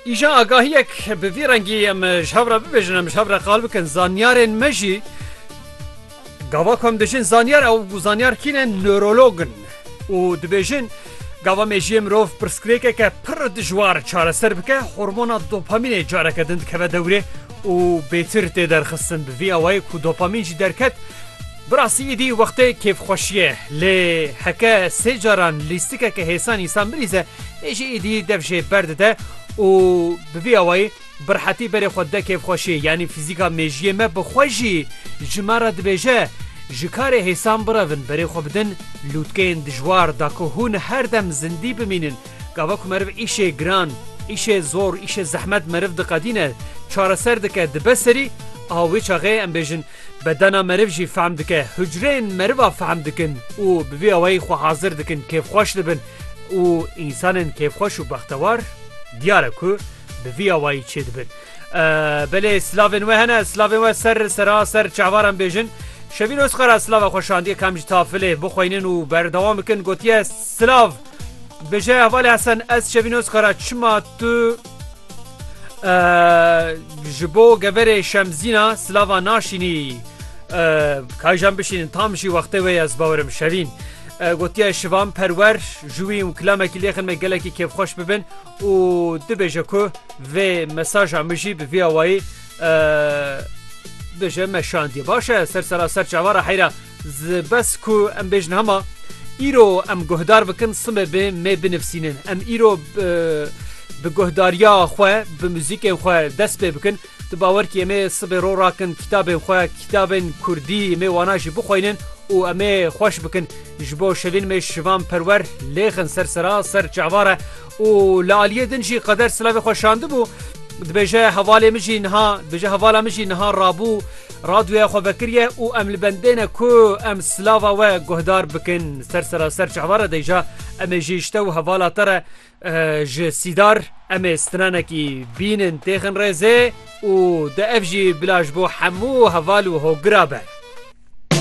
Îjan agahiyek bi vî rengî em ji hev re bibêjin em ji hev re qal bikin zanyarên me jî gava ku em dijin zanyar ew zanyar kîne nörologin û dibêjin gava mejiyê mirov pirsgirêkeke pir dijwar çareser bike hormona dopamînê careke din dikeve dewrê û bêtir tê derxistin bi vî awayê ku dopamîn jî derket Bi rastî îdî wextê kêfxweşiyê lê heke sê caran lîstikeke hêsan însan bilîze lê jî îdî dev jê berdide û bi vî awayî bi rehetî berê xwe dide kêfxweşiyê yanî fîzîka mêjiyê me bi xwe jî ji me re dibêje ji karê hêsan birevin berê xwe bidin lûtkeyên dijwar da ku hûn her dem zindî bimînin gava ku meriv îşê giran îşê zor îşê zehmet meriv diqedîne çareser dike dibe serî a wê çaxê em bêjin Bedena meriv jî fehm dike, hucreyên meriva fehm dikin û bi vî awayî xwe hazir dikin kêfxweş dibin û însanên kêfxweş û bextewar diyar e ku bi vî awayî çê dibin. Belê silavên we hene, silavên we ser sera ser çavaran bêjin. Şevîn Ozkar a silava xwe şandiye kam ji tafilê bixweynin û berdewam bikin gotiye, Silav! Bêje hevalê Hesen ez Şevîn Ozkar a çima tu Ji bo geverê Şemzîna silava naşînî kajan bişînin tam jî wextê wê ye zibawerim şevîn. Gotiye şivan perwer ji wî û kilamekî lêxin me gelekî kêfxweş bibin û dibêje ku vê mesaja min jî bi vî awayî bêje me şandiye baş e ser sera ser çavara heyra Ji bes ku em bêjin hema îro em guhdar bikin sime bi me binivsînin. Em îro bi guhdariya xwe bi muzîkên xwe dest pê bikin. Tu bawer kî emê sibê ro rakin kitabên xwe kitabên kurdî mê wana jî bixweynin û emê xweş bikin. Ji bo şevîn mê şivan perwer lêxin ser sera ser çavare û li aliyê din jî qeder silavê xwe şandibû, dibêje hevalê min jî niha dibêje hevala min jî niha rabû radyoya xwe vekiriye û em li bendêne ku em silava we guhdar bikin ser seraser çehva re deyja emê jî ji te û hevala te re ji sîdar emê stinanekî bînin têxin rêzê û de ev jî bila ji bo hemû heval û hogira be.